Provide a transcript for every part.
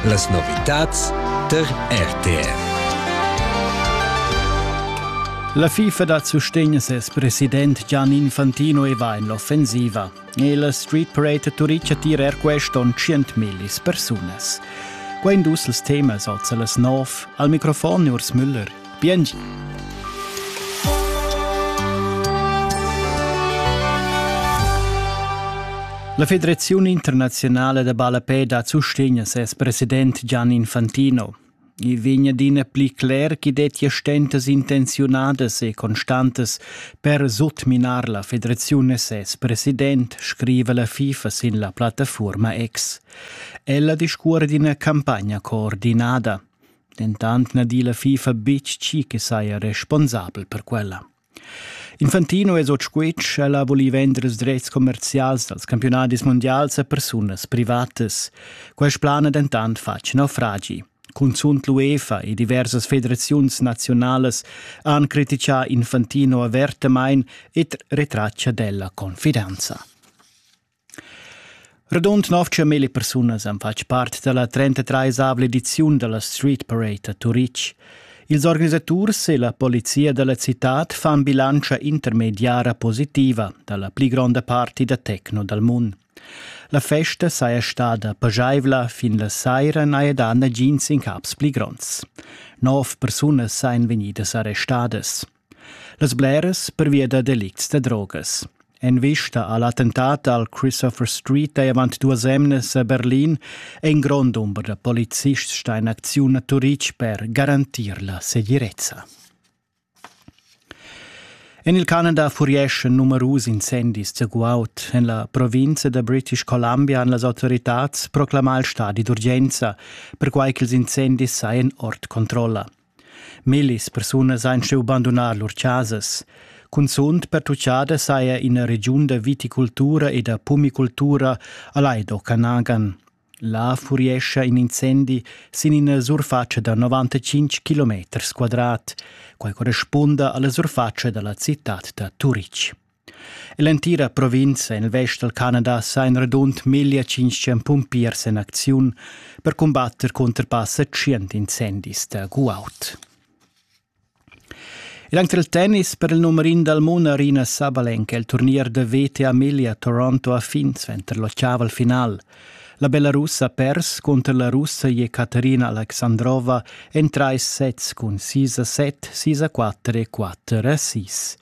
Las novitads tar RTR. La FIFA da sustegn ses president Gian Infantino e va en l'offensiva. E la Street Parade Turica tira er quest onn 100.000 persunas. Qua in dus els temas oz las 9. Al microfon Urs Müller. Bientsch! La Federaziun internaziunala da ballapè dat sustegn a ses president Gian Infantino. I vegn adina pli cler ch'i dettia stentas intenziunadas e constantas per sutminar la federaziun e ses president, scriva la FIFA sin la plattafuorma X. Ella discuor d'ina campagna coordinada. dentant na di la FIFA betg tgi che saja responsabel per quella. Infantino es ot squitsch, ella voli vendre ils drets commercials dals campionadis mondials a persunas privatas. Quest plan è dentant fatg naufragi. Cunzunt l'UEFA e diversas federaziuns nazionalas han criticà Infantino avertamain ed retratgia d'ella confidenza. Radund nov tschermilli persunas han fatg part dalla 33esavla ediziun dalla Street Parade a Turitg. Ils organisaturs e la polizia dalla citad fan bilantscha intermediara positiva dalla pli gronda parti da techno dal mund. La festa saja stada pajaivla fin la saira n'haja dà nagins incaps pli gronds. Nov persunas sajan vegnidas arrestadas. Las bleras pervia da delicts da drogas. En vista al attentat al Christopher Street ei avant duas emnas a Berlin ein grond dumber da polizists sta in acziun a Turitg per garantir la segirezza. En il Canada furieschan numerus incendis da guaud. En la provinza da British Columbia han las autoritads proclamà il stadi d'urgenza, perquai ch'ils incendis sajan ord controlla. Millis persunas ein cheu bandunar lur casas. Cunzunt pertuccada saja ina regiun da viticultura e da pumicultura a Laido Canagan. Là furiescha in incendi sin ina surfatscha da 95 km quadrat. Quai correspunda alla surfatscha dalla citad da Turitg. Ell'entira provinza en il vest dal Canada sa in radund 1500 pumpiers en acziun per cumbatter cunter passa 100 incendis da guaud. E anche il tennis per il numero in dal mondo Arina Sabalenka il turnier da VTA Emilia Toronto a fin sventer l'ottava al final. La Belarus ha pers contro la russa Jekaterina Aleksandrova en trais sets cun 6 a 7, 6 a 4 e 4 a 6.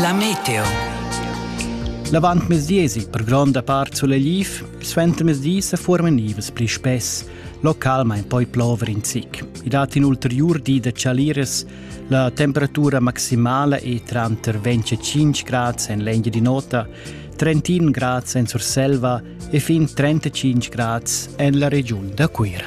La meteo. L'avantmezdi esig per gronda part sulegliv, suentermezdi se formen nivs pli spess, localmain poi plover in zic. I dat in ulteriur di da chaliras, la temperatura maximala è tranter 25 grads en l'engia di nota, 31 grads en Surselva e fin 35 grads en la regiun da Cuira.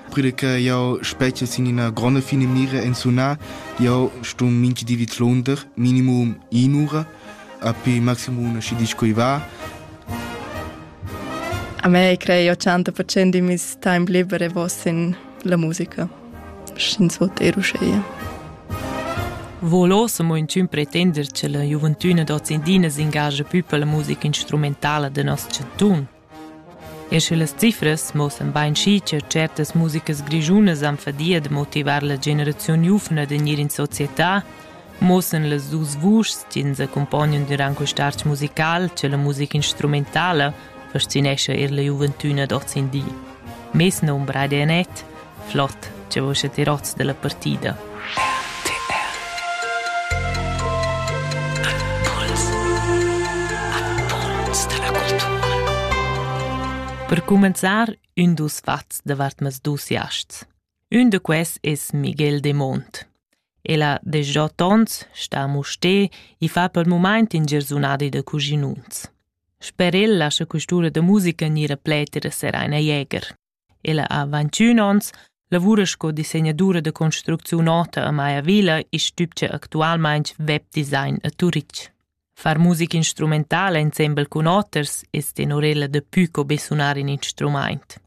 Puril che jau spetgia sin ina gronda finamira en sunar, jau ston minchi di vidlunder minimum in'ura, api maximum una schi disch quei va. A me crei 80% di mis time liber e vos in la musica. Sch'ins vot eruscheia. Volo se mo in tun pretender che la gioventüna docendina s'ingagia più per la musica instrumentala de nos chanton. Eir sche las cifras muossan bainschi cha tschertas musicas grischunas han fadia da motivar la generaziun giuvna da gnir in società, muossan las duos vuschs chi'ns accumpognan dürant quist'art musical cha la musica instrumentala fascinescha eir la giuventüna d'hoz in di. Mez nombra ed net, Flot, che vus ti rots dalla partida. Per cumenzar ün dus fats davart mes dus jasts. Ün da quels es Miguel de Mont. El ha desgià tons, sta a Musté e fa pel mumaint in gersunadi da cuginuns. Sper el lascha custura da musica gnir a pleter e sereina Jäger. Ella ha ventschün ons, lavura sco disegnatura da construcziun ota a Maya Villa e stübgia actualmaing webdesign a Turitg. Far musica instrumentala insembel cun oters es tenorella da pü co be sunar in instrumaint.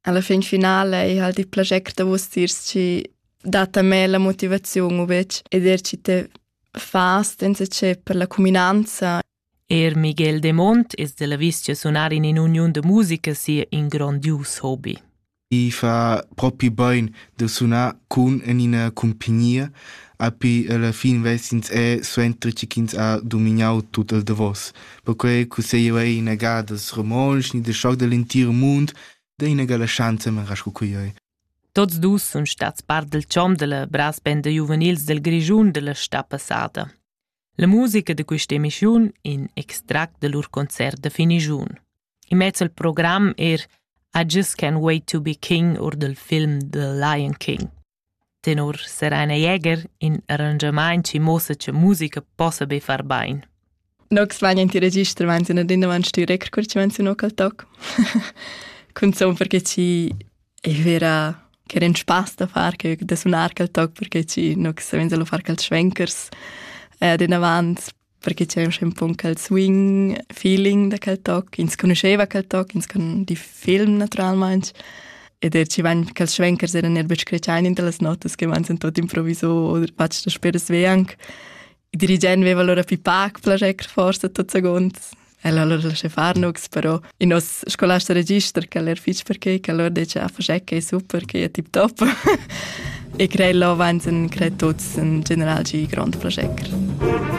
Alla fin finale ei halt il plascher da vus tiers chi dat a me la motivaziun u bec ed er chi te fa senza che per la cuminanza Er Miguel Demont es da l'avis cha sunar in in'uniun da musica sia ün grondius hobi. I fa propi bain da sunar cun en ina cumpagnia, api alla fin vessins è suenter che ins ha dominau tut il davos. Perquei cusseglia ei ina gada romontsch ni de schoc dell'entir mund da ina gala schanza marasco cuiei. Tots dus sun stats part del chom della brass band juvenils del Grischun della sta passata. La musica da questa emissiun in extract da lur concert da finigiun. I mezza il program er I just can't wait to be king or dal film The Lion King. Tenor Serena Jäger in arrangiamaint ci mossa che musica possa be far bain. Nox vegnan ti register meinten ad inavant sti record cur ci menzionò cal toc. Cun son perché ci Ich wäre che den Spaß da far che da sunar quel toc perché ci nu che savenza lu far quels schwenkers eh den avant perché c'è un schön pun quel swing feeling da quel toc ins conosceva quel toc ins con di film naturalmaing ed er ci van quels schwenkers eran er betg scretschain in las notas che van sind tot improvviso oder patsch das speres we ank Il dirigent veva allora più pac plascher forsa tot segunds. El ha allora lascià far nux, però il nostro scolasta register che era fitch perché che allora dice ah facec che è super che è tip top e crei là avanti cre tutti in general gi grande plascher.